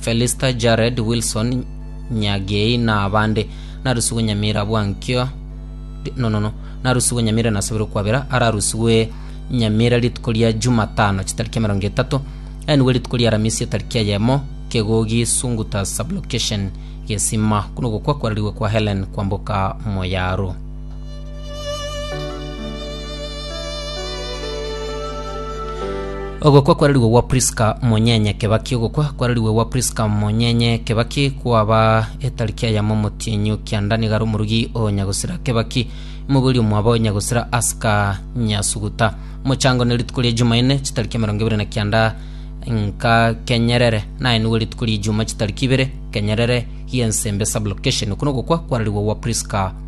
Felista, Jared, Wilson, Nyagei na abande. Narusigwe Nyamira abwo ankio Ri- no, no, no. Narusigwe Nyamira nasoberwe kwabera ararusigwe Nyamira rituko ria Jumatano chitariki emerongo etato aenigwe rituko ria Aramisi etariki eyemo Kegogi Sunguta Sublocation Gesima kuna ogokwa kwararigwe kwa Helen kwamboka Moyaro. Ogokwa kwararigwe gwa Priska Monyenye Kebaki Ogokwa kwararigwe gwa Priska Monyenye Kebaki kwaba etariki ya yamo omotienyi o Kianda nigo are omorugi o Nyagusira Kebaki mogoria omwabo Nyagusira Aska Nyasuguta Mochango ne rituko ria Jumaine chitariki emerongo ebere na kianda nka Kenyerere naye nigo rituko ria Ijuma chitariki ibere Kenyerere Hiensembe Sublocation Okwo nogokwa kwararigwe gwa Priska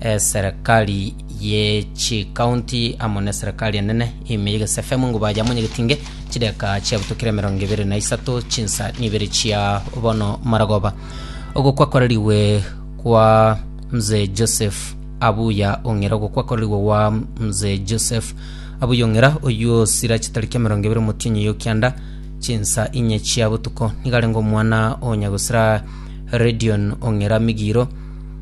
eserekari ye chikaunti amo na eserekari enene ime yegesa FM ng'ubu aye amo nyegetinge chideka chiabutokire emerongo ebere na isato chinsa nibere chia bono maragoba ogokwa kwarerigwe kwa mzee Joseph Abuya Ong'era ogokwa kwarerigwe gwa mzee Joseph Abuya Ong'era oyio osira chitariki emerongo ebere omotienyi yo kianda chinsa inye chia botuko nigarenge omwana onyagosira Redion Ong'era Migiro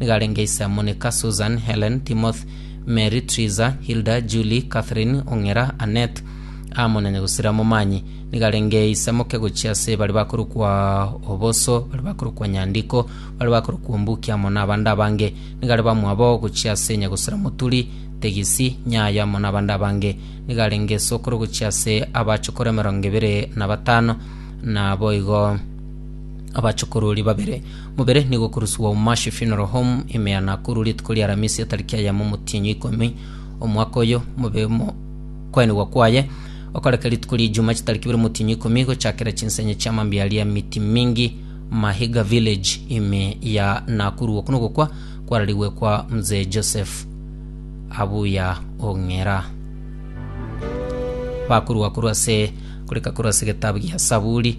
Nigo arenge ise amo neka Susan, Helen, Timoth, Mary, Triza, Hilda, Julie, Catherine, Ong'era, Annet, amo na nyagusera Momanyi. Nigo arenge ise moke gochia ase bare bakorokwa Oboso, bare bakorokwa Nyandiko, bare bakorokwa Ombuki amo na abande abange. Nigo are bamwabo gochia ase nyagusera Moturi, Tegisi, Nyayo amo na abande abange. Nigo arenge esokoro gochia ase abachokoro emerongo ebere na batano. Naboigo. Abachokorori babere, mobere nigo okoruswa Umashi Funeral Home, Imea, Nakuru, rituko ria Aramisi etariki ya yamo motienyi ikomi omwaka oyo mobe mo kwaenigwa kwaye okoreka rituko ria Ijuma chitariki ibere motienyi ikomi gochakera chinsenye chia mambia aria miti mingi Mahiga Village ime ya Nakuru. Oku nogokwa kwararigwe kwa Mzee Joseph Abuya Ong'era. Bakorwa korwa ase koreka korwa ase egetabu gia Saburi